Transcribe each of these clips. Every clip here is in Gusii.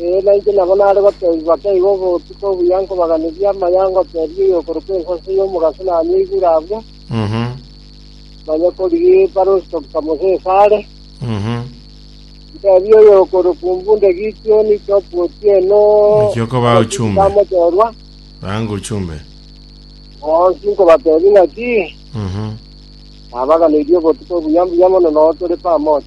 Ee, nainche nabo nare goteebigwa keiga obotuko obuya nkobaganirie amaya ngoteebie oyokorokwa ensaso y'omogaso nanyeigure abwo, Mhm. manye korigia ebarosi tobusa Mosesi are. Mhm. Nteebie oyokorokwa ombunde Gitioni, Chopu otieno, Naki okoba abachunga ochumbe. bamochorwa, Rango ochumbe. bonsi nkobateebia ng'a ki, Mhm. nabaganirie obotuko obuya mbuya mono nao tore pamoja.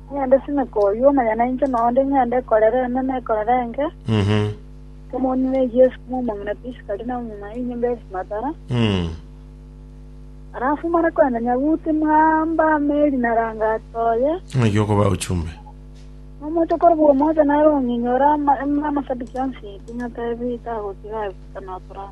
Ng'ende simeka oyio omanya nainche na onde ng'ende korera eme na ekorera enke, Mhm. Kemoni na eyio esukuma omong'ina pi isikari na omong'ina ya enyomba esimatara. Mm. Alafu mare kwenda Nyabuti mwamba meri na rangati oye, Ng'aki okoba ochumbe. omoito kore bwomocha nare ong'inyora ama- ama- amasabiki onsi pi ng'atebi tagotiga agoika notorana.